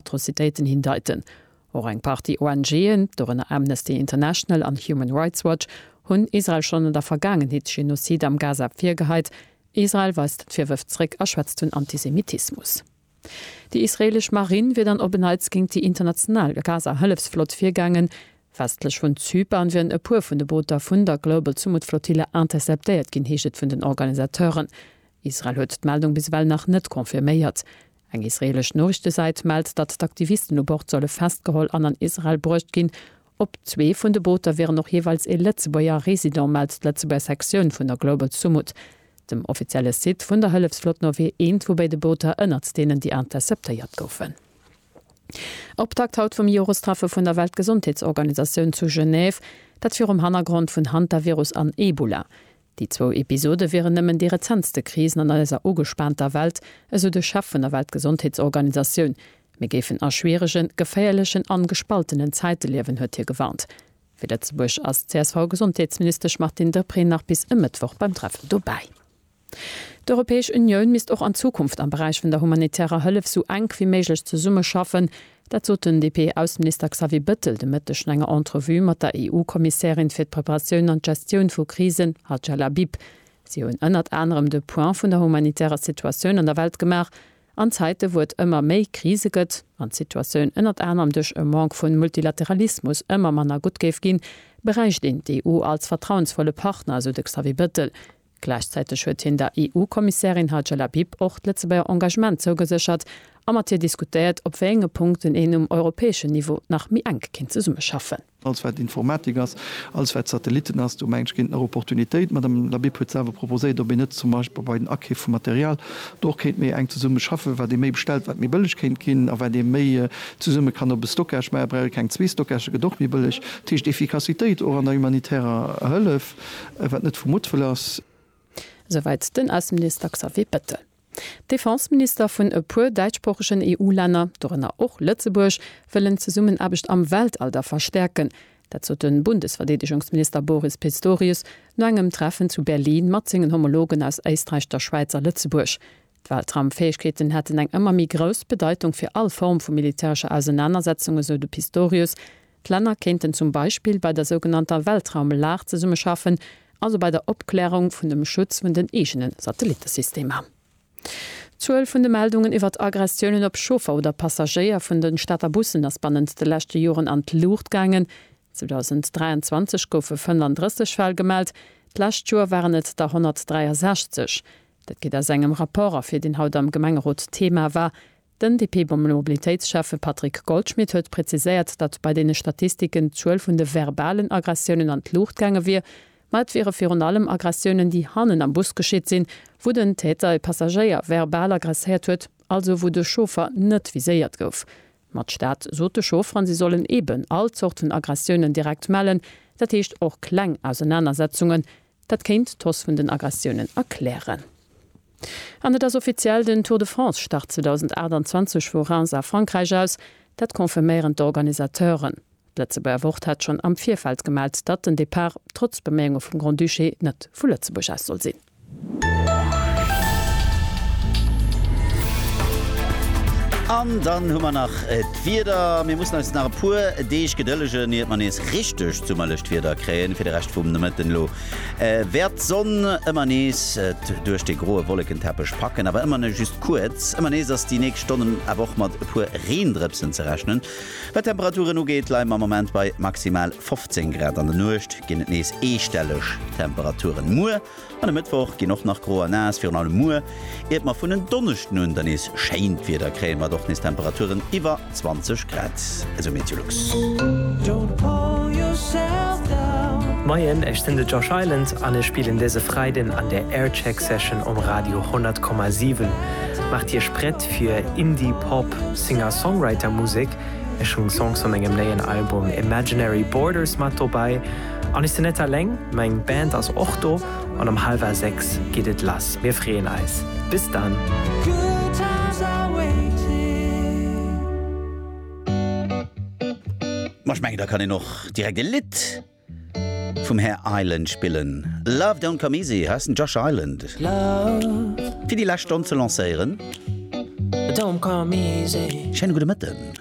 Atrocitéiten hindeiten. Och eng Partie ONG'en, dorënner Amnesty International an Human Rights Watch, hunn Israel schonn an der Vergaangenheet Genozide am Gaza virgeheit. Israel weist d'Virwërf zréck a schwätzt vun Antisemitismus. Déi israeelesch Marinn wier dann op en Neits géint déi international Gaza-Hëllefsflott virgaangen. Westlech vun Zypern wieren e puer vun de Booter vun der Global Sumud Flotille interceptéiert ginn, heescht et vun den Organisateuren. Israel huet d'Meldung bis ewell nach net confirméiert. Eng israeelesch Noriichtesäit mellt, datt d'Aktivisten u Bord solle festgeholl an an Israel bruecht ginn. Op zwee vun de Booter wieren och jeeweils ee Lëtzebuerger Resident, mellt d'Lëtzebuerger Sektioun vun der Global Sumud. Dem offizielle Site vun der Hëllefslot no wier eent vu béide Booter ënnert deenen, déi interceptéiert goufen. Optakt haut vum Jorestreffe vun der Weltgesondheetsorganisatioun zu Genève, dat virum Hannergrond vun Hantavirus an Ebola. Déi zwou Episode wieren nëmmen déi rezentste Krisen an eiser ugespaanter Welt, esou de Chef vun der Weltgesondheetsorganisatioun. Mir géifen a schwieregen, geféierlechen an gespaltenen Zäite liewen, huet hie gewarnt. Fir Lëtzebuerg ass d'CSV-Gesondheetsministesch Martine Deprez nach bis e Mëttwoch beim Treffen dobäi. D'Europäesch Unioun misst och an Zukunft am Beräich vun der humanitärer Hëllef sou enk wéi méiglech zesummeschaffen, Dat sot den DP-Ausseminister Xavier Bëttel de Mëtteg no enger Entrevue mat der EU-Kommissärin fir d'Preparatioun an d'Gestioun vu Krisen, Hadja Labib. Si hunn ënnert anerem de Point vun der humanitärer Situatioun an der Welt gemaach. An Zäite wou et ëmmer méi Krise gëtt, an d'Situatioun ënnert anerem duerch e Manque vun Multilateralismus ëmmer manner gutt géif ginn, bräicht een d'EU als vertrauensvolle Partner, esou de Xavier Bëttel. Gläichzäiteg huet hien der EU-Kommissärin Hajj Labib och d'Lëtzebuerger Engagement zougeséchert a mat hir diskutéiert, op wéi enge Punkten een um europäeschen Niveau nach méi enk kéint zesummeschaffen. Alles wat Informatik ass, alles wat Satellitten ass, do mengen ech géint nach Opportunitéit. D'Madame Labib huet selwer proposéiert, ob een net zum Beispill bei den Akeef vu Material do och kéint méi enk zesumme schaffen, wat ee méi bestellt, wat méi bëlleg kéint ginn a wat ee méi zesumme kann op e Stockage maachen. Brauch ee keng zwee Stockagë, gëtt och méi bëlleg. Dat heescht Efficacitéit och an der humanitärer Hëllef. Wat net vu Muttwëll ass. Esouwäit den Ausseminister Xavier Bettel. D'Defenseminister vun e puer däitschsproochegen EU-Länner, dorënner och Lëtzebuerg, wëllen d'Zesummenaarbecht am Weltalder verstäerken. Dat sot de Bundesverdeedegungsminister Boris Pistorius no engem Treffen zu Berlin mat sengen Homologen aus Éisträich, der Schwäiz a Lëtzebuerg. D'Weltraumfäegkeeten hätten eng ëmmer méi grouss Bedeitung fir all Form vu militärescher Ausenanersetzung, esou de Pistorius. D'Länner kéinten zum Beispill bei der sougenannter Weltraumlag zesummeschaffen, also bei der Opklärung vun dem Schutz vun den eegene Satellittesystemer. D'Zuel vun de Meldungen iwwert Aggressiounen op Chauffer oder Passagéier vun de Stater Bussen ass bannent de leschte Joren an d'Luucht gaangen. 2023 goufe 35 Fäll gemellt, d'lescht Joer waren et der 163. Dat geet aus engem Rapport ervir, deen haut am Gemengerot Thema war. Den DP-Mobilitéitsschäffe Patrick Goldschmidt huet präziséiert, datt bei deene Statistiken d'Zuel vun de verbalen Aggressiounen an d'Luucht gaange wier, ma et wiere virun allem Aggressiounen, déi hannen am Bus geschitt sinn, wou den Täter e Passagéier verbal agresséiert huet, also wou de Chauffer net viséiert gouf. Ma d'Stad sot de Chaufferen, si sollen eeben all Zort vun Aggressiounen direkt mellen, dat heescht och kleng Ausenanersetzungen, Dat kéint d'Hausse vun den Aggressiounen erklären. An et ass offiziell, den Tour de France start 2028 vu Reims a Frankräich aus. Dat confirméieren d'Organisateuren. D'Lëtzebuerger Wort hat schonn am Virfeld gemellt, datt den Depart, trotz Beméiunge vum Grand-Duché, net vu Lëtzebuerg aus soll sinn. An dann hu mer nach. D'Wieder, mir mussen eis nach e puer Deeg gedëllegen, iert mer nees richteg summerlecht Wieder kréien. Fir de Rescht vum Nomëtten elo wäert d'Sonn ëmmer nees et duerch de groe Wollekenteppech packen, awer ëmmer nëmme just kuerz. Ëmmer nees ass déi nächst Stonnen awer och mat e puer Reendrëpsen ze rechnen. Wat d'Temperaturen ugeet, leie mer am Moment bei maximal 15 Grad. An der Nuecht ginn et nees eestelleg Temperaturen. Muer An e Mëttwoch ginn och nach gro a naass, virun allem muer. Iert mer vun en Donneschden un da nees schéint Wieder kréien, mat och nees Temperaturen iwwer 20 Grad, esou MeteoLux. Moien, ech sinn de Josh Island an ech spillen dëse Freiden an der Aircheck Session um Radio 100,7. Maacht Iech prett fir Indie Pop Singer-Songwriter Musek. Ech hunn Songs vu mengem néien Album Imaginary Borders mat dobäi An ech sinn net alleng, meng Band ass och do an um halwer 6 geet et lass. Mir freeën eis. Bis dann! Ma ech mengen, da kann een och direkt e Lidd vum Här Island spillen. Love don't come easy heißt den Josh Island. Fir déi lescht Stonn ze lancéieren. Schéine gudde Mëtten.